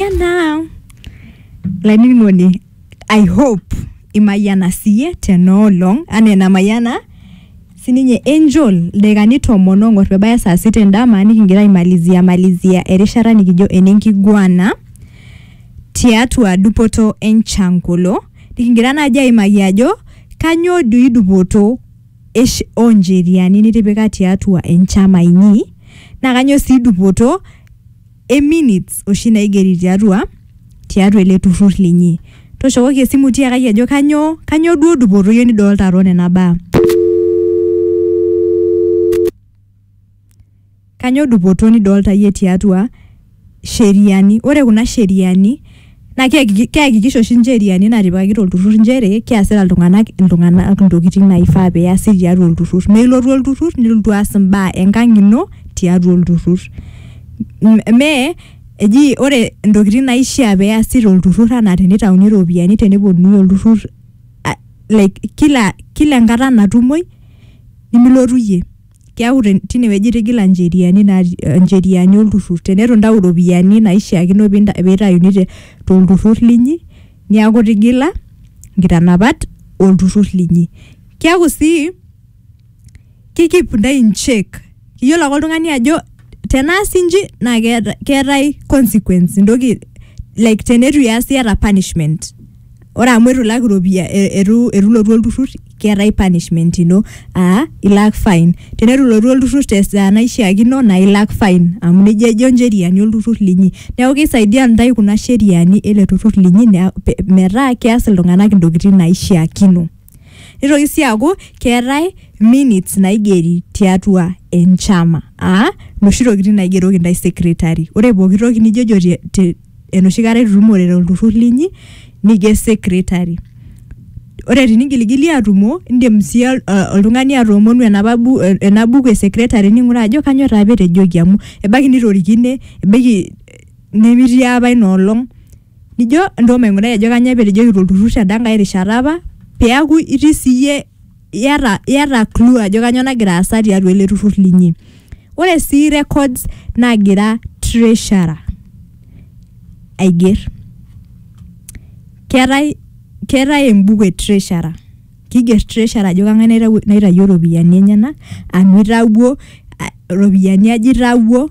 Mayiana lainining'oni I hope imayiana siye tenoolong anaa enamayiana sininye Angel ildakikani tomon ong'or pebaya saa sita endama nikingira aimalizia malizia erishata nikijo enenkiguana tiatua dupoto enchankolo nikingira naaji aimaki ajo kanyoo doi dupoto esh oncheriani nitipika tiatua enchama inyi naa kanyoo sii dupoto e minutes oshi naigeri tiatua tiatua ele turrur linyi. Toshokoki esimu tiakaki ajo kanyoo kanyoo duo dupoto iyie nidolta too nena baa. Kanyoo dupoto nidolta iyie tiatua sheriani, ore kuna sheriani naa keakiki- keakikisha oshi incheriani natipikaki tolturrur inchere keasita iltung'anak iltung'anak intokiting naifaa peasi tiatua olturrur neilotu olturrur nilotu aas imbaa enkang ino tiatua olturrur M- mee eji ore intokiting naishia peasi tolturrur anaa tenitauni iropiyiani teneponunui olturrur a- like kila kila enkata natumoi nimilotu iyie. keaku te- tine wueji itigila ncheriani naati- eh, ncheriani olturrur teneitu intau iropiyiani naishiakino pinta- pitayuni te- tolturrur linyi niaku itigila nkitanapat olturrur linyi kiaku sii ki keep intae in check iyiolo ake oltung'ani ajo tenaasi inji naa keeta- keetae consequence entoki like teneitu iyas iyata punishment. ore amu eitu ilak iropia eitu eitu ilotu olturrur keetae punishment ino aa ilak fine teneitu ilotu olturrur tesaa naishiakino naa ilak fine amu nejia ejo incheriani olturrur linyi neeku keisaidia intae kuna sheriani ele turrur linyi nea pe metaa keas iltung'anak intokiting naishiakino nitoki sii aaku keetae minutes naigeri tiatua enchama aa noshi tokiting naigeroki intae secretary ore pokitoki nijojo te te. enoshi kata itutumore tolturrur linyi nijo secretary ore tinigilgili atumo indim sii ol- eh, oltung'ani atoomonu enapa bu- eh, ena buku e secretary ning'uraa ajo kanyioo taa apa etejoki amu ebaiki nitorikine ebaiki eh, nemitii apa ina olong nijo entoo maing'urai ajo kanyioo apa etejoki tolturrur teda nkae rishata apa peaku itii siiyie iyata iyata clue ajo kanyo nagira aasa tiatua ele turrur linyi ore sii records nagira treasurer aiger keetae keetae embuku e treasurer kiger treasurer ajo kang'ae naitawuo naitayuo iropiyiani enyenak anu itawuo a- iropiyiani aja itawuo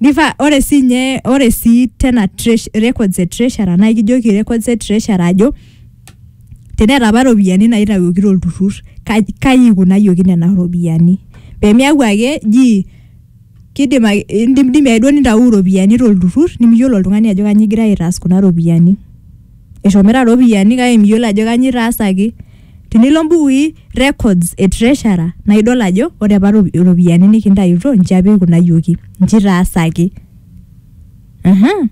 Nifa ore sii nye ore sii tena tresh, records e treasurer naa ikijoki records e treasurer ajo teneeta apa iropiyiani naitawuoki tolturrur kai kai ikunayioki nena ropiyiani pemiaku ake ji kidim ake indimidimi ake duo nintawuo iropiyiani tolturrur nemiyiolo oltung'ani ajo kanyio igirae aitaas kuna ropiyiani eshomita iropiyiani kake miyiolo ajo kanyio itaasaki. Tinilo mbukuui, records, e treasurer naa idol ajo ore apa rop- iropiyiani nikintayutuo nji apa eikunayioki, nji itaasaki. Aha.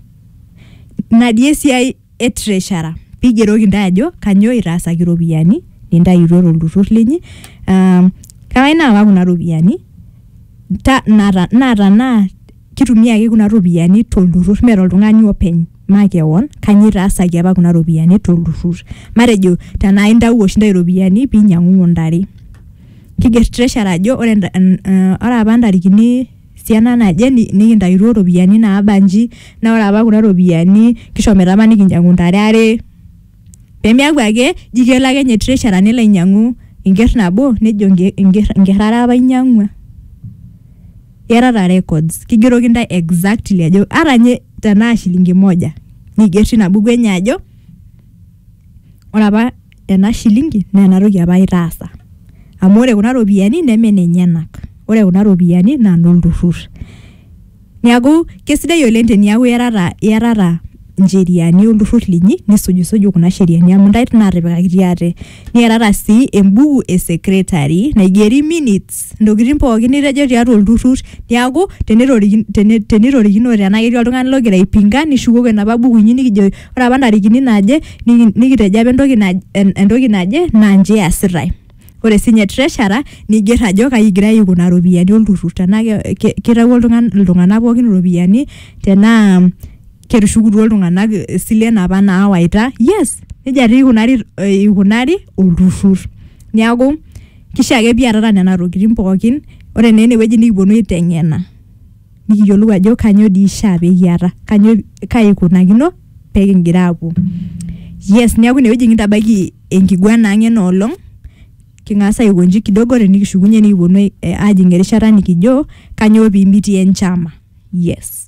Ina dii esiai e treasurer piigeroki intae ajo kanyoo itaasaki iropiyiani nintayutuo tolturrur linyi aa kawae naa kakwa kuna ropiyiani ta nata naa tenaa kitumia ake kuna ropiyiani tolturrur mee toltung'ani openy makewon kanyio itaasaki apa kuna ropiyiani tolturrur matejo tenaa intawuo oshi intae iropiyiani pinyiang'ung'u intare kiger treasurer ajo ore enda- en- eh, ore apa ntarikini siana naje ni- nikintayutuo iropiyiani naaba nji naa ore apa kuna ropiyiani kishomoita apa nikinyiang'u intare are pemiaku ake ji kelo ake nye treasurer nelo ainyiang'u enkerr nabo nejo enke- enkerr enkerr are apa ainyiang'ua. Iatata records. Kigeroki ntae exactly ajo ata nye tenaa shilingi moja niger tina buku enye ajo ore apa ena shilingi naa ena toki apa itaasa. Amu ore kuna ropiyiani neme nenyenak. Ore kuna ropiyiani naa nolturrur. Neeku kesidai oleng teniaku iatata iatata ncheriani olturrur linyi nisujisuju kuna sheriani amu ntae natipikakitia ate niatata sii embuku e secretary naigeri minutes ntokitin pookin nitejo tiatua olturrur niaku tenetoriki- tene- tenitorikinote tenaa ketii oltung'ani logira aipinga nishukoki enapa buku inyi nikijo ore apa ntarikini naaje niki- nikitejo apa entoki naj- en- entoki naje naa nji eesitae ore sinye treasurer nigerr ajo kai igirae aiko nena ropiyiani olturrur tenaa ke- ke- kitawuo oltung'ani iltung'anak pookin iropiyiani tenaa ketushukutuo iltung'anak isilen apa naawaita yes nejia tii ikunari eh, ikunari olturrur niaku kishaa ake piatata nena tokitin pookin ore naa enewueji nikiponu aiteng'ena nikiyiolou ajo kanyoo dii ishaa pekiata kanyoo kai ikunakino pekingira apuo yes niaku inewueji kintabaiki enkiguana ang ena olong king'as aikonji kidogo tenikishukunye nikiponu ai- eh, ajing erishata nikijo kanyoo pimitie enchama yes